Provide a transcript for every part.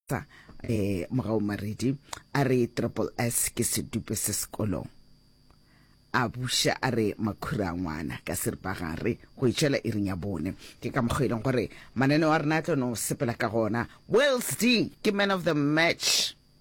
sa eh mogao maredi a re triple s ke sedupe se sekolong a buša a re makhura a ngwana ka seripagare go itšhela e reng ya bone ke ka mokgwa e leng gore mananeo a rena a tlo no sepela ka gona wells d ke man of the match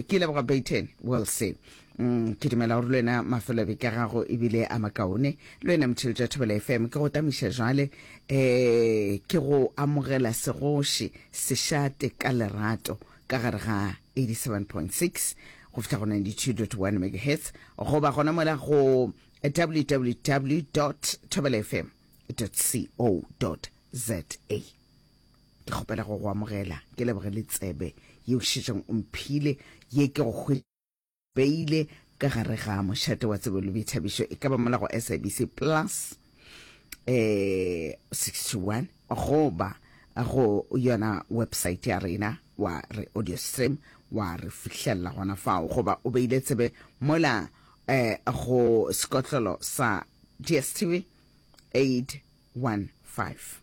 ke leboga baiten well said mm, ke dumela gore le wena mafelobe ka gago ebile a makaone le wena motheletši wa thobela fm ke go tamiša jale um ke go amogela segoši sešate ka lerato ka gare ga 87.6 go fitlha go 92.1 megahertz goba gona mola go www tobelfm co za ke kgopela go go amogela ke leboge le tsebe yeo šetšang o mphile ye ke go beile ka gare ga mošate wa tsebo le boithabišo e ka ba mola go sabc plus eh 61 goba go yona website ya rena wa re audio stream wa re fihlelela gona fao goba o beile tsebe mola eh go sekotlolo sa dstv 815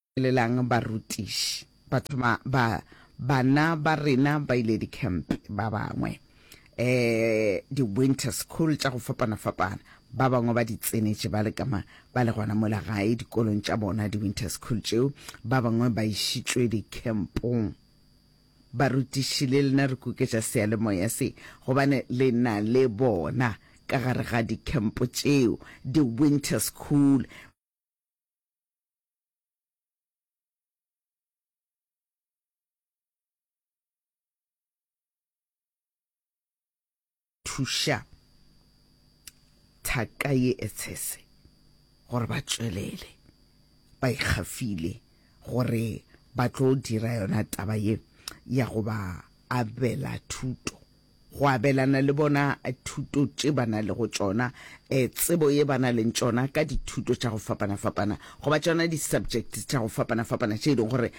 Lelang barutiši. Bathoma ba, bana ba rena ba ile dikhempe, ba bangwe, e, di-winter school tša go fapana-fapana. Ba bangwe ba di tsenetše ba le ka ma, ba le gona mola gae dikolong tša bona, di-winter school tšeo. Ba bangwe ba išitšwe dikhempong. Barutiši, le lena re kuketša seyalemoya se, gobane le na le bona ka gare ga dikhempo tšeo, di-winter school. thuša thaka ye etshese gore ba tšwelele ba ikgafile gore ba tlo dira yona taba ye ya go ba abela thuto go abelana le bona thuto tše ba na lego tšona, tsebo ye ba na leng tšona ka dithuto tša go fapana-fapana goba tšona di-subject tša go fapana-fapana tše e leng gore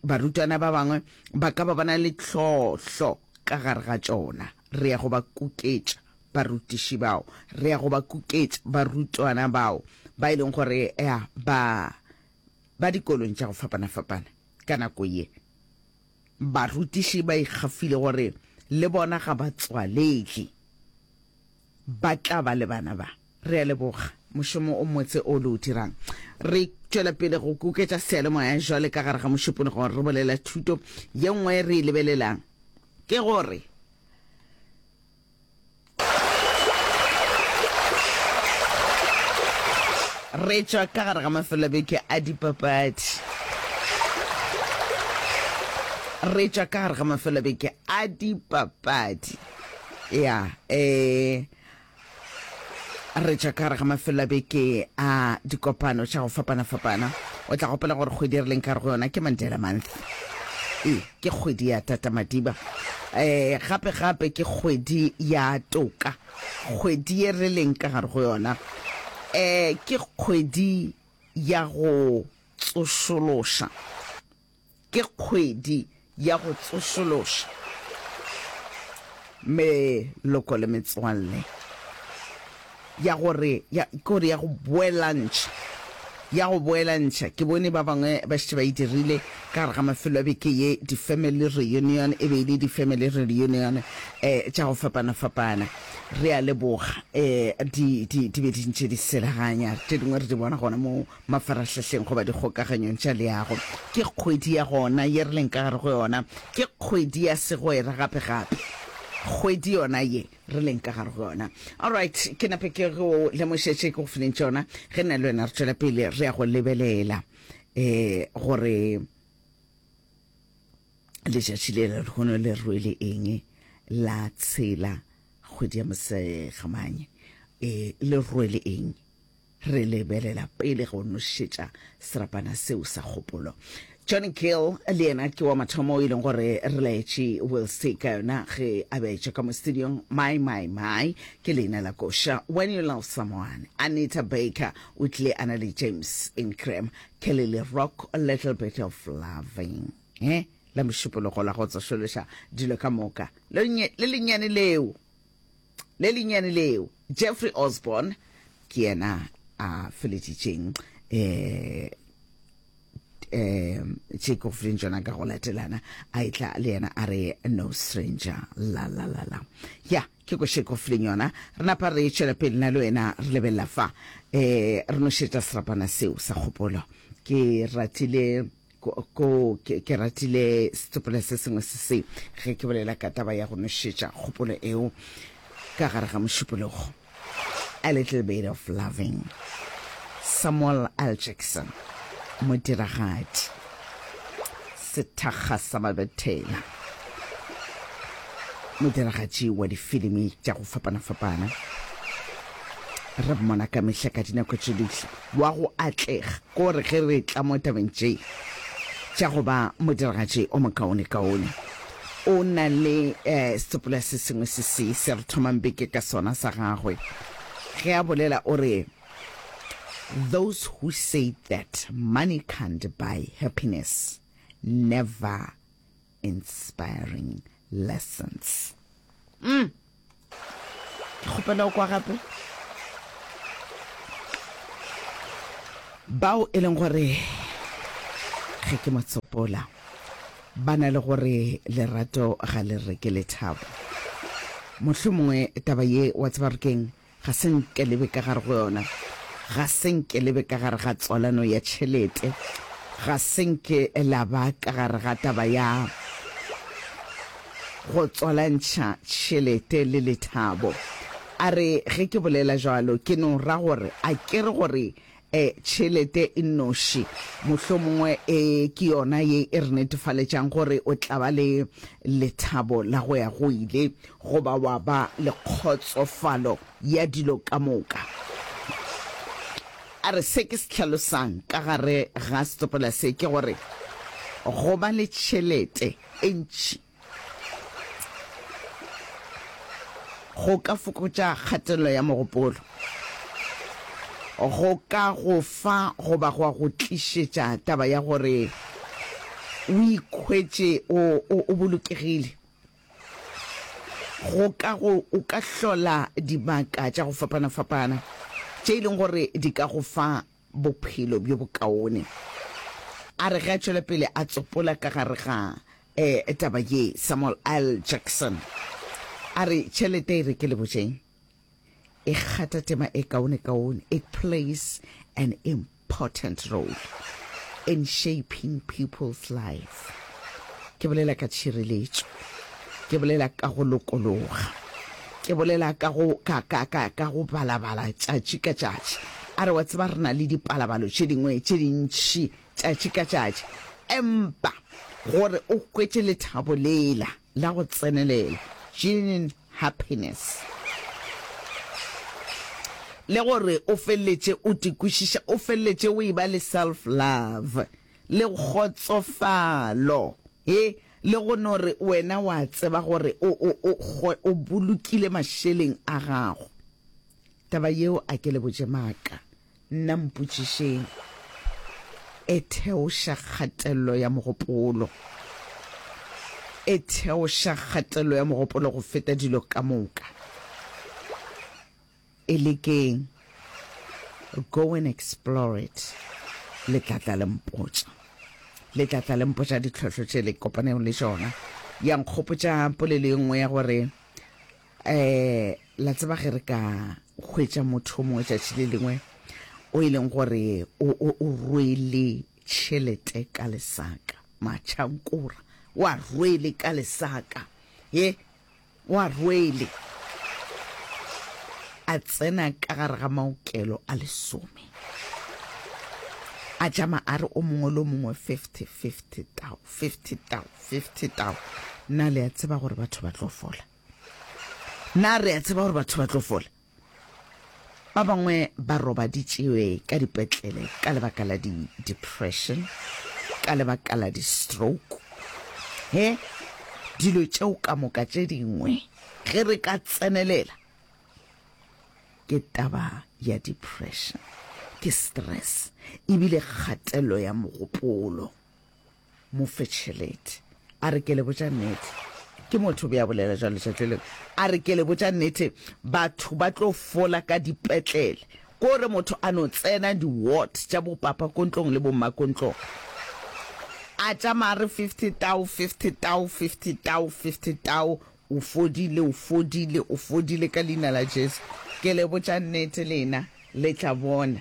barutwana ba bangwe ba ka ba ba na le tlhohlo ka gare ga tšona. Re ya go ba kuketša barutiši bao, re ya go ba kuketša barutwana bao ba e leng gore ba ba dikolong tša go fapana-fapana ka nako ye. Barutiši ba ikgafile gore le bona ga ba tswalege ba tla ba le bana ba. Re a leboga mošomo o motse o le o dirang. Re tšwela pele go kuketša seyalemoya jwale ka gare ga mošupologo re bolela thuto. Ye nngwe re e lebelelang ke gore Re tšwa ka gare ga mafelobeke a dipapadi. Re tšwa ka gare ga mafelobeke a dipapadi. Ya, eh, re tšwa ka gare ga mafelobeke a dikopano tša go fapana-fapana. O tla gopela gore kgwedi re leng ka re go yona ke Mandela Month. E. Ke kgwedi ya tatamadiba. Gape gape ke kgwedi ya toka. Kgwedi ye re leng ka gare go yona ke kgwedi ya go tsošološa. Ke kgwedi ya go tsošološa meloko le metswalle. ya gore ya ke gore ya go boelantšha ya go boelantšha ke bone ba bangwe ba šetše ba e dirile ka gare ga mafelo a beke ye di-family reunion e be e le di-family reunion um tša go fapana-fapana re a leboga um di di di be di ntše di selaganya tše dingwe re di bona gona mo mafarahlahleng goba dikgokaganyong tša leago ke kgwedi ya gona ye re leng ka gare go yona ke kgwedi ya segwera gape-gape kgwedi yona ye re leng ka gare go yona. Alright, ke nape ke go lemošetše ke go fileng tšona ge nna le wena re tšwela pele re ya go lebelela um gore letšatši le le lehono le rwele eng la tshela kgwedi ya mosegamanye um le rwele eng Re lebelela pele go nošetša serapana seo sa kgopolo. John Gill le yena ke wa mathomo o e leng gore re laetše Wilsey ka yona ge a beetša ka mo studiong my my my ke leina la koša when you love someone Anita Baker o tlile a na le James Ingram Kelly le Rock a little bit of loving eh la mošupologo la go tsošološa dilo ka moka le lennyane leo le lennyane leo, Jeffrey Osborne, ke yena a feletšitšeng um um Jacob Flynn jona ka go latelana a etla le yena a re no stranger la la la la ya ke ko Jacob Flynn yona re napa re tšwela pele na le wena re lebelela fa um re no šetša serapana seo sa kgopolo ke ratile Ko, ko, ke, ke ratile setsopela se sengwe se se, ge ke bolela ka taba ya go nošetša kgopolo eo ka gare ga mošupologo. A little bit of loving. Samuel L. Jackson, modiragadi, sethakga sa mabethela, modiragatši wa difilimi tša go fapana-fapana. Re mmona ka mehla ka dinako tše dihla. wa go atlega ke gore ge re tla mo tabeng tše tša go ba modiragatši o mokaonekaone, o na le sepula se sengwe se se se re thomang beke ka sona sa gagwe ge a bolela, o re, Those who say that money can't buy happiness never Inspiring lessons. Mm. Ke kgopela o kwa gape. Bao e leng gore ge ke mo tsopola ba na le gore lerato ga le reke lethabo. Mohlomongwe taba ye wa tseba re keng Ga se nke le be ka gare go yona. Ga se nke le be ka gare ga tswalano ya tšhelete. Ga se nke la ba ka gare ga taba ya go tswalantšha tšhelete le lethabo. A re, Ge ke bolela bjalo, ke no ra gore a ke re gore E, tšhelete e nnoši mohlomongwe e, ke yona ye e re netefaletšang gore o tla ba le lethabo la go ya go ile goba wa ba le kgotsofalo ya dilo ka moka. A re se ke se hlalosang ka gare ga setopela se ke gore go ba le tšhelete e ntši Go ka fokotša kgatelelo ya mogopolo. Go ka go fa goba gwa go tlišetša taba ya gore o ikhwetše o, o, o bolokegile. Go ka go, o ka hlola dibaka tša go fapana-fapana tše e leng gore di ka go fa bophelo bjo bokaone. A re ge a tšwela pele a tsopola ka gare ga um taba ye, Samuel L. Jackson a re, Tšhelete e re ke le botšeng e kgatha tema e kaonekaone. It plays an important role in shaping people's life. Ke bolela ka tšhireletšo, ke bolela ka go lokologa. Ke bolela ka go, ka, ka, ka, ka go balabala tšatši ka tšatši. A re, Wa tseba, re na le dipalabalo tše dingwe tše dintši tšatši ka tšatši. Empa gore o hwetše lethabo lela la go tsenelela, genuine happiness, le gore o feleletše o tikwešiša, o feleletše o e-ba le self-love, le kgotsofalo, he, le go no re wena wa tseba gore o, o, o, go, o bolokile mašeleng a gago. Taba yeo a ke le botše maaka, nna mpotšišeng. E theoša kgatelelo ya mogopolo. E theoša kgatelelo ya mogopolo go feta dilo ka moka. E lekeng. Go and explore it. Le tla tla le mpotša. Le tla tla le mpotša ditlhohlo tše le kopanego le tšona. Ya nkgopotša polelo e nngwe ya gore eh la tseba ge re ka hwetša motho o mongwe tšatši le lengwe o e leng gore o o o rwele tšhelete ka lesaka matšhankora wa rwele ka lesaka ye O a rwele, a tsena ka gare ga maokelo a lesome, a tšama a re o mongwe le o mongwe, fifty, fifty tau, fifty tau, fifty tau. Na le a tseba gore batho ba tlo fola? Na re a tseba gore batho ba tlo fola? Ba bangwe ba robaditšwe ka dipetlele ka lebaka la di-depression, ka lebaka la di-stroke. He, dilo tšeo ka moka tše dingwe ge re ka tsenelela ke taba ya depression, ke stress ebile kgatelelo ya mogopolo. Mofetšheledi. A re, Ke le botša nnete. Ke motho o be a bolela jalo letšatši leo. A re, Ke le botša nnete, batho ba tlo fola ka dipetlele. Ko re motho a no tsena di-ward tša bopapakontlong le bommakontlong, a tšamaya a re, Fifty tau, fifty tau, fifty tau, fifty tau, o fodile, o fodile, o fodile ka Leina la Jesu. Ke le botša nnete, lena le tla bona.